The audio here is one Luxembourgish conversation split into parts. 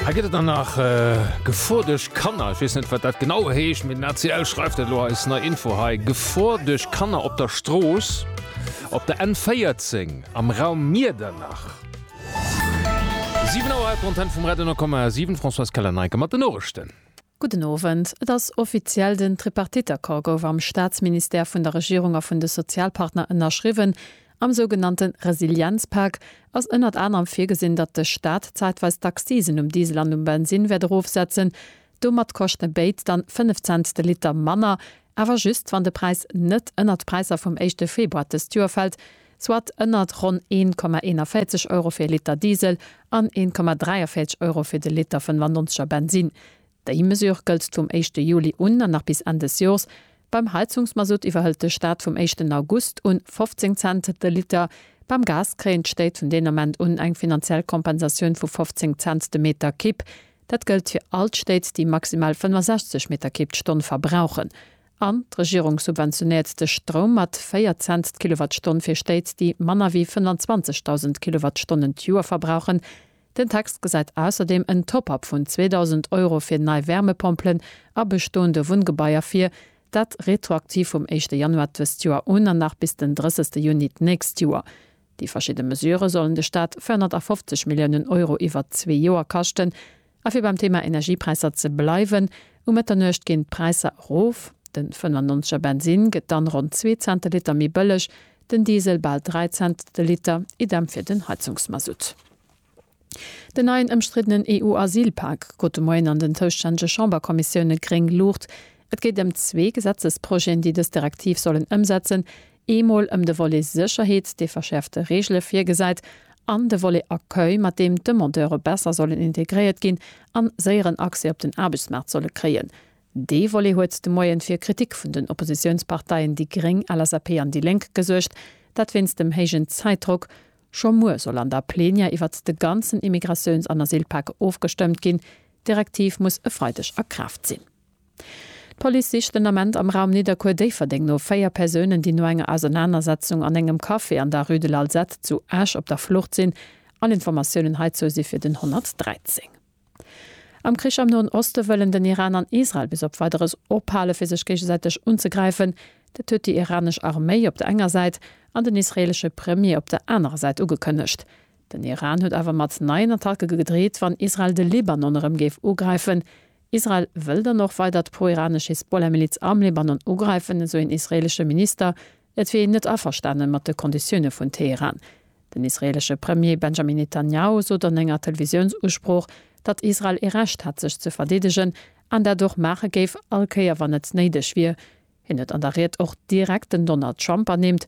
Hei gëtt et dann nach Gefor duerch Kanner. Ech weess net, wat dat genau heescht, mee den ACL schreift dat elo eis nei Info hei, Gefor duerch Kanner op der Strooss op der N14 am Raum Miedernach. 7 Auer, d'Antenn vum Radio 10,7, Françoise Keller-Neicker mat den Noriichten. Gudden Owend. Et ass offiziell, den Tripartite-Accord gouf am Staatsministère vun der Regierung a vun de Sozialpartner ënnerschriwwen. Am sougenannte Resilienzpak ass ënnert anerem virgesinn, datt de Staat zäitweis d'Accisen um Diesel an um Bensin wäert erofsetzen. Domat koschte béid dann 5 Cent de Liter manner, awer just wann de Präis net ënnert d'Präisser vum éischte Februar dëst Joer fält, soit ënnert ronn 1,41 Euro fir e Liter Diesel an 1,43 Euro fir de Liter 95 er Bensinn. Déi Mesure gëllt vum éischte Juli un an nach bis Enn des Jors. Beim Heizungsmasutt iwwerhëlt de Staat vum éischten August un 15 Cent de Liter. Beim Gas kréien d'Stéit vun deen Ament un eng finanziell Kompensatioun vu 15 Cent de Meter Kipp. Dat gëllt fir all d'Stéit, déi maximal 65 Meter Kipp d'Stonn verbrauchen. An d'Regierung subventionéiert de Stroum mat 4 Cents d'Kilowattstonn fir Stéit, déi manner wéi 25.000 Kilowattstonnen d'Joer verbrauchen. Den Text gesäit ausserdeem en Top-up vun 2.000 Euro fir nei Wärmepompelen a bestoende Wunngebaier vir, dat retroaktiv vum éischte Januar dëst Joer un an nach bis den 30. Juni d'nächst Joer. Déi verschidde Mesurë sollen de Staat 450 Milliounen Euro iwwert zwee Joer kaschten. A fir beim Thema Energiepräisser ze bleiwen, Um Mëtternuecht ginn d'Präisser erof, den 95 er Bensin gëtt dann ronn zwee Cent de Liter méi bëlleg, den Diesel bal dräi Cent de Liter, idem fir den Heizungsmasutt. Den neien ëmstriddenen EU-Asylpak krut de Moien an den zoustännege Chamberkommissioune gréng Luucht. Et geet ëm zwee Gesetzesprojeten, déi dës Direktiv sollen ëmsetzen, Eemol ëm de Volet Sécherheet, dee verschäerfte Reegele virgesäit, an de Volet Accueil, mat deem d'Demandeure besser sollen integréiert ginn an séieren Accès op den Aarbechtsmaart solle kréien. Dee Volet huet de Moien fir Kritik vun den Oppositiounsparteien déi gréng, LSAP an déi Lénk gesuergt, dat wéinst dem héijen Zäitdrock. Scho muer soll an der Plenière iwwert de ganzen Immigratiouns an Asylpak ofgestëmmt ginn. D'Direktiv muss e Freideg a Kraaft sinn. D'Police sicht den Ament am Raum Nidderkuer-Déifferdeng no véier Persounen, déi no enger Ausernanersetzung an engem Café an der Rue de l'Alzette zu Esch op der Flucht sinn. All Informatiounen heizou si fir den 113. Am Krich am Noen Oste wëllen den Iran an Israel bis op Weideres ophale fir sech géigesäiteg unzegräifen. Dat huet déi iranesch Arméi op der enger Säit an den israeelesche Premier op der anerer Säit ugekënnegt. Den Iran huet awer mat neien Attacke gedreet, wann Israel de Libanon erëm géif ugräifen. Israel wëll dann och weider d'proiranesch Hisbollah-Miliz am Libanon ugräifen, esou een israeelesche Minister. Et wier een net averstane mat de Konditioune vun Teheran. Den israeelesche Premier Benjamin Netanjahu sot an enger Televisiounsusprooch, datt Israel ee Recht hätt sech ze verdeedegen an dat och maache géif, all Kéier wann et néideg wier. Hien huet an der Ried och direkt den Donald Trump ernimmt,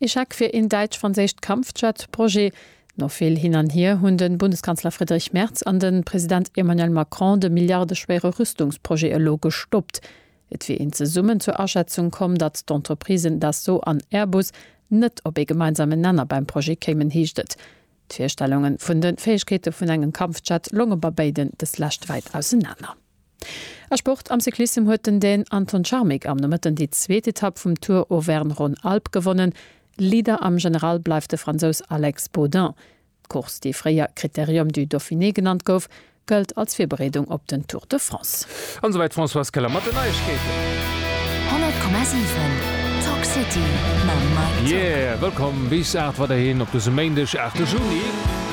Ee Scheck fir een däitsch-franséischt Kampfjet-Projet. No vill Hin an Hier hunn de Bundeskanzler Friedrich Merz an de President Emmanuel Macron de milliardeschwéiere Rüstungsprojet elo gestoppt. Et wier een zesummen zur Aschätzung komm, datt d'Entreprisen Dassault an Airbus net op ee gemeinsamen Nenner beim Projet kéimen, heescht et. D'Virstellunge vun de Fäegkeete vun engem Kampfjet longe bei béiden deslescht wäit ausenaner. A Sport, Am Cyclissem huet den Dän Anton Charmik am Nomëtten déi zweet Etapp vum Tour Auvergne-Rhône-Alpes gewonnen. Leader am General bleift de Fransous Alex Baudin. D'Course, déi fréier Critérium du Dauphiné genannt gouf, gëllt als Virbereedung op den Tour de France. An esouwäit d'Françoise Keller mat den Neiegkeeten. 100,7 Talk City mam Mike Ziel. Yeah! Wëllkomm bis 8 weiderhin op dësem Méindeg, 8 de Juni.